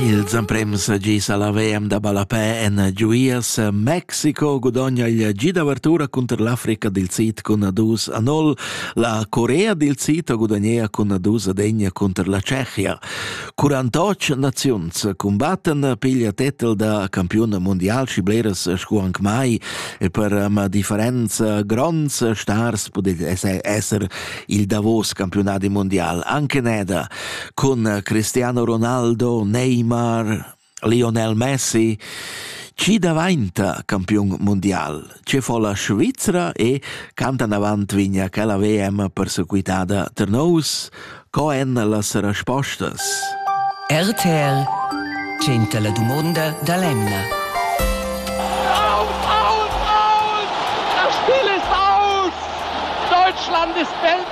Ils emprems gis alla VM da ballapè en giuias Mexico gudogna il gi d'avertura cunter l'Africa dil Sid cun dus a nol. La Corea dil Sid gudagnea cun dus ad egna cunter la Tschechia. 48 naziuns cumbatten piglia tetel da campiun mondial schi bleras scu anc mai e per ma differenza gronds stars pudel esser il davos campiunadi mondial. Anche Neda cun Cristiano Ronaldo, Neymar, Lionel Messi, chi davainta campiun mundial, ce fo la Svizra e cantan avant vigna quella VM persequitada Ternous, co èn las respostas? RTL Genta la dumonda da l'Emna. Aus, aus, aus! Das Spiel ist aus! Deutschland ist Weltmeister!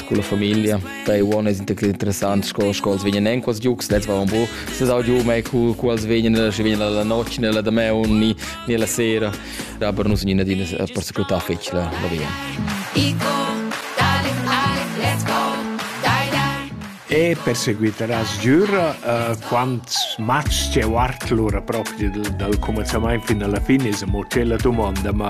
con la famiglia. Pei uon es interessant sco sco els vegnan en quels giugs, lets va un po, se sau giù mai cu cu els vegnan, sche vegnan la notg né la demaun ni ni la sera. Da per nus nina din es persecutar fetg la la via. E perseguiteràs giura uh, quants match c'è guard lura propi dal, dal començament fin alla fine, è mo c'è la domanda, ma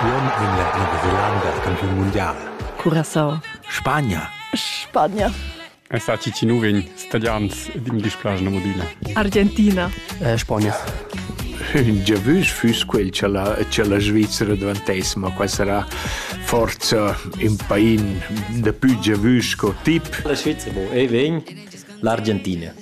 Uonn vegn la Nova Zelanda campiun mundial. Curacao. Spagna. Spagna. È stati ti nuvin stadians din displace na modina. Argentina. Eh, Spagna. Già vus fuss quel che la, che la Svizzera dvantess, ma qua sarà forza in pain da più già vus co tip. La Svizzera, ei vegn l'Argentina.